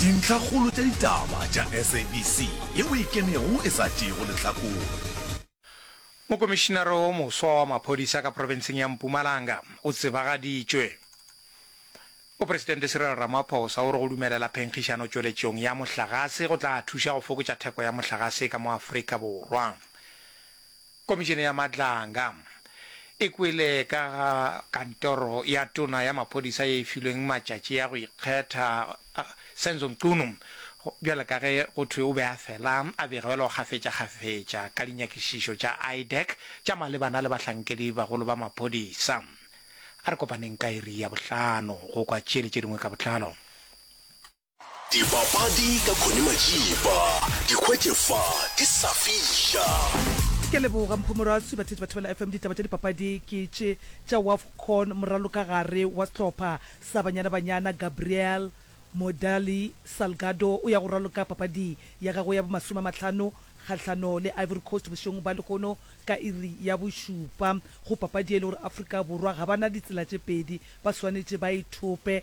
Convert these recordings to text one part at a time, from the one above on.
Dintlhakgolo tša ditaba tša SABC yeo e kenego e sa tšeego lehlakore. Mokomišinara wo moswa wa maphodisa ka profenseng ya Mpumalanga o tsebagaditšwe. Mopresidente Cyril Ramaphosa o re go dumelela phenkgišano tšweletšong ya mohlagase go tla thuša go fokotša theko ya mohlagase ka mo Afrika Borwa. Komišene ya Madlanga e kwele ka ga kantoro ya tona ya maphodisa ye e filweng matšatši a go ikgetha Senzo Mchunu bjale ka ge go thwe o be a fela a begelwa kgafetšakgafetša ka dinyakišišo tša IDAC tša malebana le bahlankedi bagolo ba maphodisa. A re kopaneng ka iri ya bohlano go kwa tše le tše dingwe ka botlalo. Dipapadi ka Connie Majiba, di hwetše fa di sa fiša. Ke a leboga Mpho Moraswi. Batheetši ba Thobela FM, ditaba tša dipapadi ke tše tša Wafcon, moralokagare wa sehlopha sa Banyana Banyana Gabriel Modaly Salgado o ya go raloka papading ya gagwe ya bomasome a mahlano kgahlano le Ivory Coast bošegong bja lehono ka iri ya bošupa go papadi ye e le gore Afrika Borwa ga ba na ditsela tše pedi, ba swanetše ba e thope.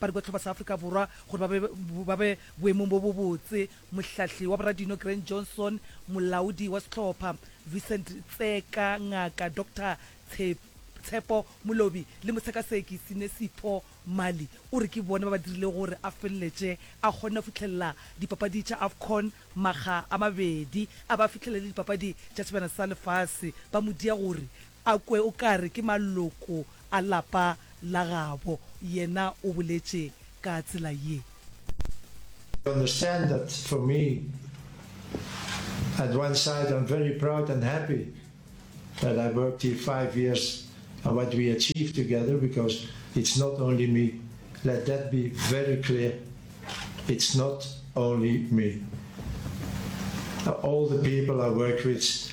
ba re botlhaba sa Afrika Borwa gore ba be ba be boemong bo bo botse. Mohlahli wa boradino Grant Johnson, molaodi wa sehlopha Vincent Tseka, Ngaka Doctor Tshepo Molobi le motshekaseki Sinesipho Mali o re ke bone ba ba dirilego gore a feleletše a kgonne go fihlelela dipapadi tša Afcon makga a mabedi a ba fihlelele dipapadi tša sebjana sa lefase ba mo dia gore a kwe o ka re ke maloko a lapa la gabo, yena o boletše ka tsela ye. You understand that for me, at one side I'm very proud and happy that I worked here five years and what we achieved together because it's not only me, let that be very clear, it's not only me, all the people I work with,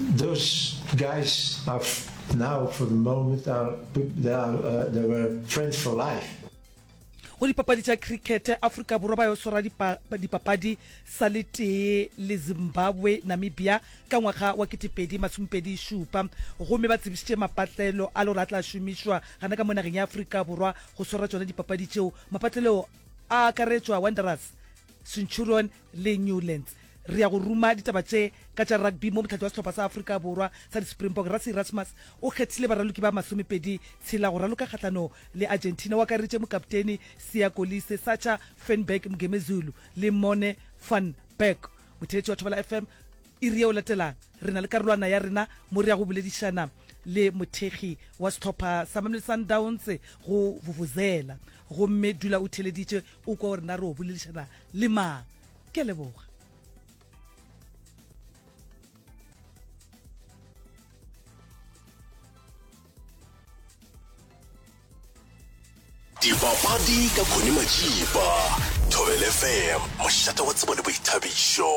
Those guys are now for the moment are, they, are, uh, they were friends for life. go dipapadi tša cricket aforika borwa ba yo swara dipapadi sa le tee le zimbabwe namibia ka ngwaga wa ketepedi masomepedi šupa gomme ba tsebišitše mapatlelo a le gore a tla šomišwa gana ka mo nageng ya aforika borwa go swara tšona dipapadi tšeo mapatlelo a akaretšwa wanderers centurion le newlands re ya go ruma ditaba tše ka tša rugby mo mohlathi wa sehlopha sa afrika borwa sa di-springbok rasi erasmus o kgethile baraloki ba masomepedi tshela go raloka kgahlano le argentina o akareditše mokapteni sia kolise sacha fenberg mgemezulu le mone van berg motheetši wa thobela fm iri ye o latelang re na le karolwana ya rena mo re ya go boledišana le mothekgi wa setlhopha sa mamele sundowns go vuvuzela gomme dula o theleditše o kwa o rena re o boledišana le mang ke a leboga dipapadi ka khone majiba thobelefm mošate wa tsebo le boithabišo